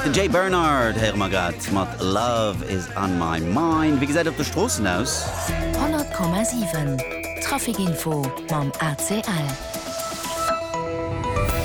Den Jay Bernard héiere mer grad mat Love is on my mind. Wéi gesäit et op de Stroossen aus? 100,7 Traficinfo mam ACL.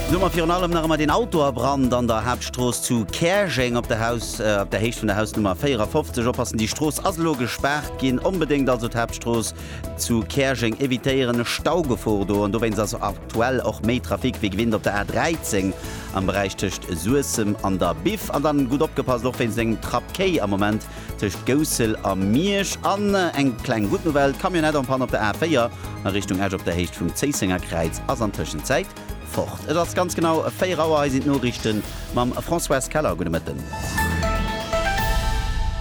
Hu mer virun allem nach ëmmer deen Autoerbrand an der Haaptstrooss zu Käerjeng op der Haus, op der Héicht vun der Hausnummer 54. Oppassen, déi Strooss ass elo gespaart ginn. Onbedéngt also d'Haaptstrooss zu Käerjeng evitéieren, Staugefor do. An dowéinst ass Aktuell och méi Trafic wéi gewinnt op der A 13 am Beräich tëscht Suessem an der Biff. An dann gutt opgepasst och wéinst engem Trappkéi am Moment tëscht Goussel a Miersch. An eng kleng gutt Nouvelle, Camionnette en panne op der A 4 a Richtung Esch op der Héicht vum Zéissenger Kräiz ass an Tëschenzäit fort. Et ass ganz genau 4 Auer, hei sinn d'Noriichte mam Françoise Keller. Gudde Mëtten.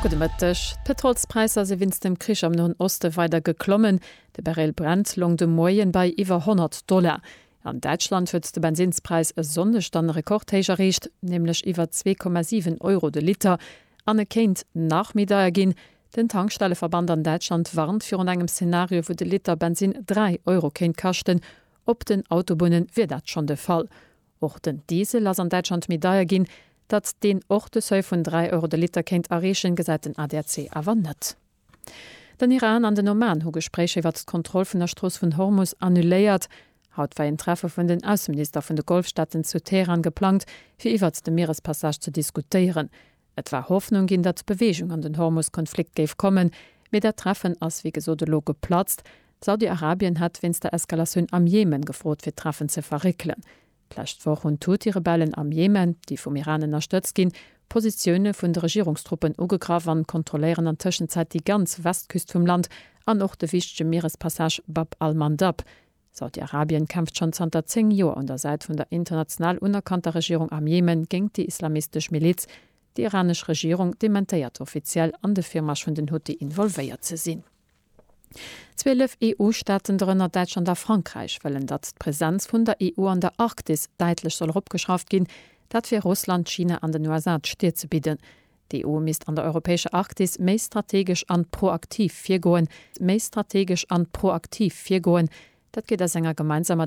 Gudde Mëtteg. D'Pëtrolspräisser si winst dem Krich am Noen Oste weider geklommen. De Barrel Brent long de Moien bei iwwer 100 Dollar. An Däitschland huet de Bensinnspräis e Sonndeg dann e Rekordhéich erreecht, nämlech iwwer 2,7 Euro de Liter. An e kéint nach méi deier ginn. Den Tankstelleverband an Däitschland warnt virun engem Szenario, wou de Liter Bensinn 3 Euro kéint kaschten. Op den Autobunne wier dat schonn de Fall. Och den Diesel ass an Däitschland méi deier ginn. Datt deen och de Seuil vun 3 Euro de Liter kéint erreechen, gesäit den ADAC awer net. Den Iran an den Oman hu Gespréich iwwert d'Kontroll vun der Strooss vun Hormus annuléiert. Haut war een Treffe vun den Ausseminister vun de Golfstaaten zu Teheran geplangt, fir iwwert de Mierespassage ze diskutéieren. Et war Hoffnung ginn, datt Beweegung an den Hormus-Konflikt géif kommen, mee dat Treffen ass wéi gesot elo geplatzt. Saudi-Arabien hat wéinst der Eskalatioun am Jemen gefrot, fir d'Treffen ze verréckelen. D'lescht Woch hunn d'Houthi-Rebellen am Jemen, déi vum Iran ënnerstëtzt ginn, Positioune vun de Regierungstruppen ugegraff an kontrolléieren an Tëschenzäit déi ganz Westküst vum Land an och de wichtege Mierespassage Bab al-Mandab. Saudi-Arabien kämpft schonn zanter 10 Joer un der Säit vun der international unerkannter Regierung am Jemen géint déi islamistesch Miliz. Déi iranesch Regierung dementéiert offiziell an de Virmarsch vun den Houthi involvéiert ze sinn. Zwielef EU-Staaten, dorënner Däitschland a Frankräich, wëllen, datt d'Presenz vun der EU an der Arktis däitlech soll eropgeschrauft ginn. Dat fir Russland, China an den USA d'Stir ze bidden. D'EU misst an der europäescher Arktis méi strategesch an proaktiv virgoen, méi strategesch an proaktiv virgoen. Dat geet aus enger gemeinsamer.